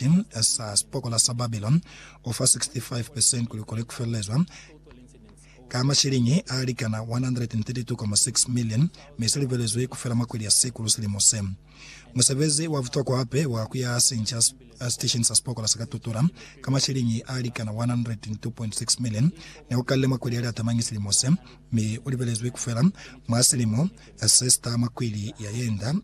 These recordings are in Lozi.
Sipiti sa sipokola sa Babiloni u fa 65 percent kuli kone ku felelezwa ka masheleñi a likana 132.6 million, mi se lubelezwi ku fela mwa kweli ya Sikulu silimo se. Musebezi wa butokwa hape wa ku ya sinca sitesheni sa sipokola sa ka Tutura ka masheleñi a likana 102.6 million ne u kalile mwa kweli ya Liatamanyi silimo se, mi u lubelezwi ku fela mwa silimo se si ta mwa kweli ya yenda.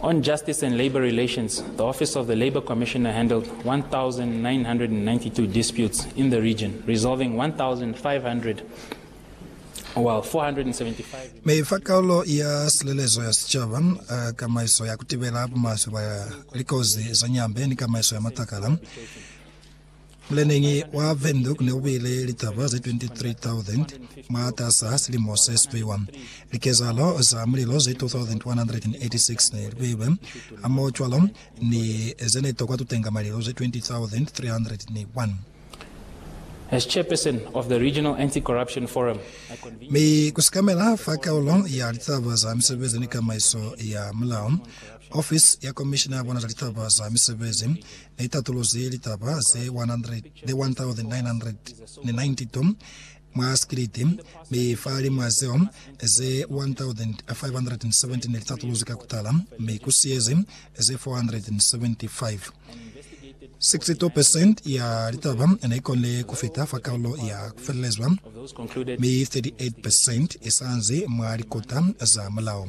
On justice and labour relations, the office of the Labour Commissioner handled 1,992 disputes in the region, resolving 1,500 while 475 Me fa kaulo ya silelezo ya sicaba, uh, kamaiso ya kutibela bumaswe ba likozi za nyambe ni kamaiso ya matakala. Muleneñi wa Windhoek ne ubile litaba ze 23,000 mwataasa silimo se sipiwa. Likezahalo za mulilo ze 2,186 ne libeilwe hamohocwalo ni zene tokwa tutenga malilo ze 20,301. As chairperson of the Regional Anti-Corruption Forum, I convened. Mi ku sikamela fa kaulo ya litaba za misebezi ni kamaiso ya mulao, ofisi ya komishina ya bona za litaba za misebezi Ni tatuluzi litaba ze 100 le 1992 mwa sikiliti, mi fahalimw'a zeo, ze 1,570 ne li tatuluzwi ka ku tala, mi ku siyezi ze 475. 62 percent ya litaba ne i konile ku fita fa kalulo ya ku felelezwa, mi 38 percent i sa nzi mwa likota za mulao.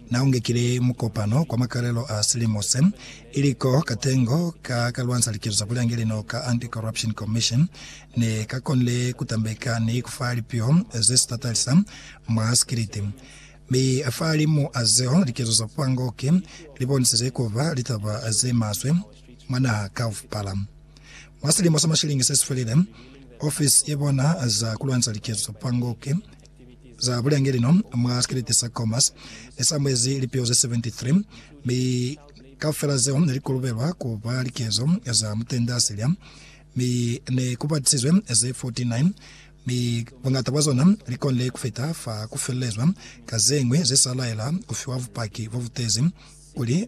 Na ungekile mukopano kwa makalelo a silimo se, ili ko katengo ka ka lwansa likezo za bulyangeli no ka Anti-Corruption Commission ne ka konile ku tambeka ni ku fa lipio ze si tatalisa mwa sikiliti. Mi fahalimu a zeo, likezo za pango ki li bonisize ku ba litaba ze maswe mwa naha kaufala. Mwa silimo sa mashilingi se si felile, ofisi ye bona za ku lwansa likezo za pango ki Za bulenge lino mwa sikelete sa Comas ne sa mwezi lipeo ze 73, mi kaufela zeo ne li kolobelwa ku ba likezo za mutende Asiria, mi ne ku patisizwe ze 49, mi buñata bwa zona li konile ku fita fa ku felelezwa ka ze ñwi ze sa laela ku fiwa bupaki bo butezi kuli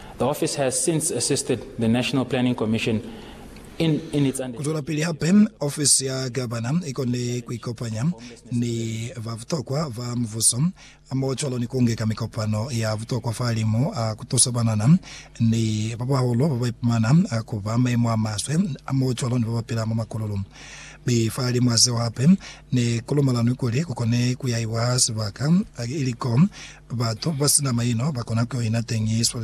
The office has since assisted the National Planning Commission in in its under. Kuzwelapili hape, ofisi ya Gavana ikone kuikopanya ni babutokwa ba mubuso mo cwalo ni kungeka mikopano ya butokwa fa limu a kutusa banana ni babahulu babaipumana kuba maimo amaswe mo cwalo ni babapila mwa makululu. Mi fa limu a zeo hape, ne kulumalanwi kuli kukone kuyaiwa sibaka ili ko batu basina maino bakona kuyoina teñi sibaka se siswalelezi.